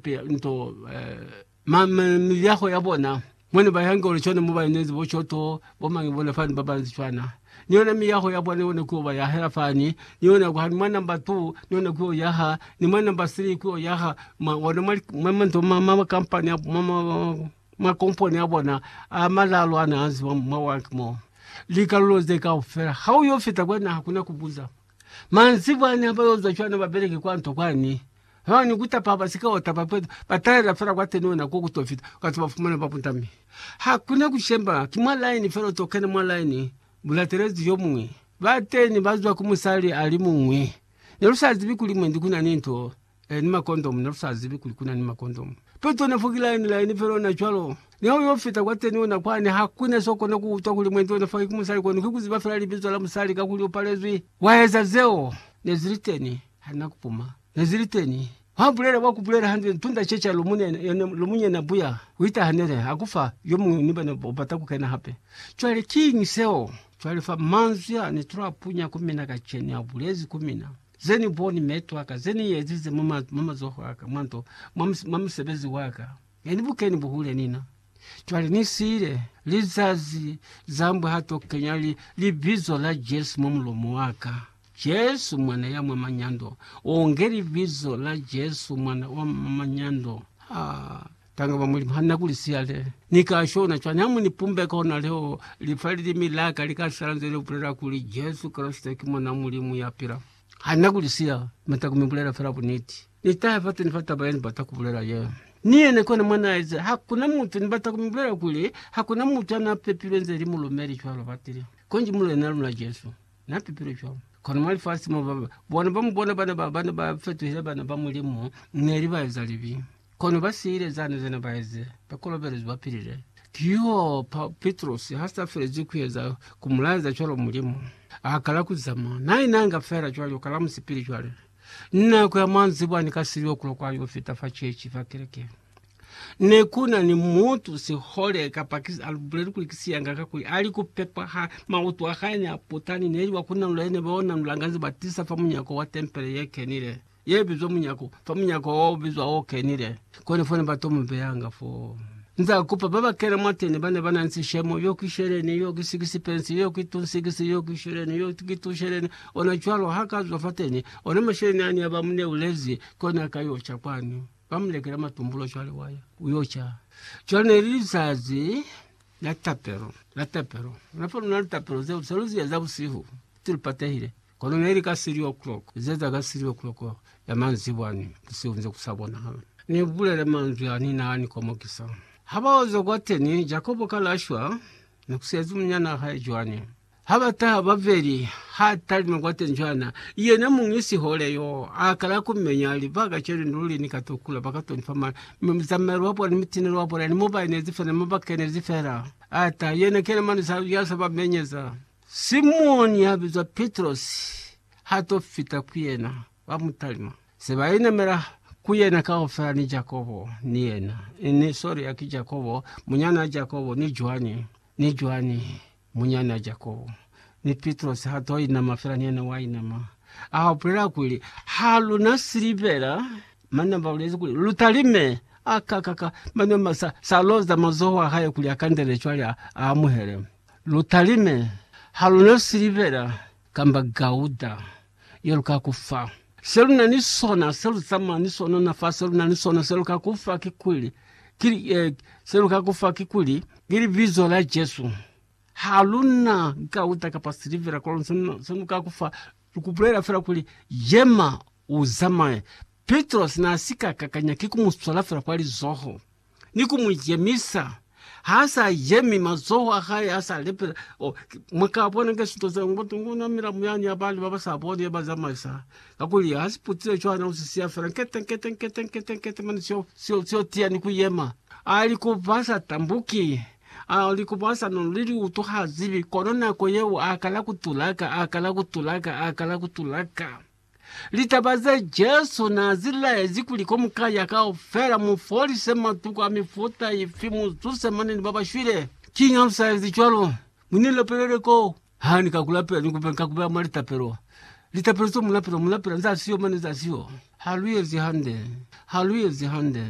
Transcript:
Pia nto ma ma miliaho ya bona mone ba yange ole chone mo ba inezi bo choto bo mange bona fani ba banzi chwana niona miyaho ya bona yone kuyo ba ya hela fani niona kwa hanuma namba tu niona kuyo yaha ni mwana namba sili kuyo yaha ma ona mali mama nto mama makampani ya mama ma komponi ya bona amalalo ana azi wam mawa kimo likalulo ze kaufela hauyo fita kwena hakuna kubuza Manzibwani ha ba yo zwa cwana ba beleke kwa nto kwani. Haiba ni ku tapa ba si ka wa tapa peto, ba talela fela kwa teni ona ko ku to fita, ka to ba fumana ba putami. Ha ku na ku shemba, ki mwa laini fela u to kena mwa laini, bu latelezi yo muñwi. Bateni ba zwa ku musali a li muñwi. Ne lu sa zibi kuli mwendi ku na ni nto. E, ni makondomu. Ne lu sa zibi kuli ku na ni makondomu. Peto ne fo ki laini, laini fela ona cwalo. Ne ha u yo fita kwateni, ona kwani, ha ku na s'o kona ku utwa kuli mwendi ona fa ki musali kono ki ku ziba fela libizo la musali, kakuli u palezwi. Wa eza zeo. Ne zi li teni. Ha na ku puma. Ne zi li teni. Wa bulela, wa ku bulela hande, tunda ce ca lomunyena, yona lomunyena buya, ku ita ha ne li, ha ku fa yo muñwi ni bana u bata ku kena hape. Cwale, kiñi seo? Cwale fa manzwi a ne tula punya ku mina kacenu, a bulezi ku mina. Ze ni boni meeto aka, ze ni ezize mwa mazoho aka, mwa nto, mwa musebezi waka, ne ni bukeni buhule nina. Cwale ni siile lizazi zambwa ha to kenya li, Libizo la Jesu mwa mulomo waka. Jesu, Mwana ya mwa manyando. Oh, nge Libizo la Jesu, Mwana wa mwa manyando. Ha, Tanga ba Mulimu, Hanna kuli siyale ni ka shona cwani ha mu ni pumbeka hona leo li fa lilimi la ka li ka sala nze li bulela kuli Jesu Kreste ki Mwan'a Mulimu ya pila? Hanna kuli siya, mi ta ku mi bulela fela buniti. Ni tahe fatu ni fa taba ye ni bata ku bulela ye. Ni yene kona mwa n'a ize, Hakuna mutu, ni bata ku mi bulela kuli, hakuna mutu ya n'a pepilwe nze li mulumeli cwalo batili, konji Mulena luna Jesu. Na pepile cwalo. Kono mwa lifasi mo ba bona ba mu bona bana ba bana ba fetuhile bana ba Mulimu, neli ba eza libi. Kono ba siile zane zene ba eze, ba kolobelezwi ba pilile. Kihoo, pa, Pitrosi ha sa felezi ku eza, ku mu laeza cwalo Mulimu. A kala ku zamaya. Na inanga fela cwalo, kala musipili cwale. Ni nako ya manzibwa ni ka silyo ku lokwa yo fita fa chechi, fa kerekeni. Ne ku na ni mutu sihole ka Pakistan a lubuleli kuli ki siyanga ka kuli a li ku pepa ha mautu a hae ne a puta ni neli wa ku nanula ye ne ba nanulanga nze ba tisa fa munyako wa tempele ye kenile, ye bizwa munyako, fa munyako wa o bizwa o kenile. Kone fo ne ba to mu beyanga foo. Nze a kupa ba ba kena mwateni ba ne ba na ni sishemo, Yo ki sheleni, yo ki sikisipensi, yo ki tun sikisi, yo ki sheleni, yo ki tun sheleni. Ona cwalo ha ka zwa fateni, ona masheleni a ne ba mu neulezi, kone a ka yo ca kwani. Ba mu lekela matumbulo cwale wa ya, u yo ca. Cwale ne li lizazi la tapelo, la tapelo. Luna fa luna litapelo zeo sa lu zi eza busihu, ti lu patehile. Kono ne li ka three o'clock, lu zeza ka three o'clock ya manzibwa ni busihu nze ku sa bonahala. Ni bulele manzwi a ni na ni komokisa. Ha ba oza kwateni, Jakobo ka la shwa, ni ku sezi munyanaa hae Joani. Ha ba taha babeli, ha talima kwateñi cwana, yena muñi sihole yo a kala ku menya, a li, Ba kacenu luli ni ka to kula, ba ka to ni fa mali, mi muzamaeli wa bona ni mutineli wa bona ni mo ba inezi fela, ni mo ba kenezi fela. A ta, yena ki yena mani sa, ya sa ba menyeza. Simoni ya bizwa Pitrosi ha to fita ku yena, ba mu talima, se ba inamela ku yena kaufela, ni Jakobo ni yena, ni, sorry, ya ki Jakobo, munyana wa Jakobo, ni Joani, ni Joani, Munyana Jakobo, ni Pitrosi ha to inama fela ni yena wa inama. A bulela kuli, Ha lu na silivera, mane ba bulezi kuli, Lu talime. A ka ka ka, mane ma sa, sa loza mazoho a hae kuli a kandele cwale a, a amuhele. Lu talime. Ha lu na silivera, kamba gauda ye lu ka ku fa. Se lu na ni sona, se lu zamaya ni sona ona fa, se lu na ni sona, se lu ka ku fa kikuli, ki, eh, se lu ka ku fa kikuli, ki Libizo la Jesu. Ha lu na gauda kapa silivera kwalo, se lu, se lu ka ku fa. Lu ku bulela fela kuli, Yema, u zamaye. Pitrosi na si ka kakanya ki ku mu swala fela kwa lizoho. ni ku mu jemisa, ha sa jemi, mazoho a hae a sa lepela. Oh, mwa ka bona ke sinto zeo, ngo tungu na milamu yani ya bali ba ba sa boni ye ba zamaisa, kakuli ha si putile cwana, u si siya fela nkete, nkete, nkete, nkete, nkete, mane sio, sio, sio tiya ni ku yema. A li ku ba sa tambuki, a li ku ba sa no lili utu ha zibi, kono nako yeo a kala ku tulaka, a kala ku tulaka, a kala ku tulaka. Litaba ze Jesu n'a zi laezi kuli komukaya kaufela mu folise matuku a mifuta ifi mu zuse mane ni ba ba shwile. Kiñi ha lu sa ezi cwalo? Mu ni lapelele ko ha ni ka ku lapela, ni kupe ni ka ku beha mwa litapelo. Litapelo ze mu lapela, mu lapela za siyo mane za siyo. Ha lu ezi hande. Ha lu ezi hande.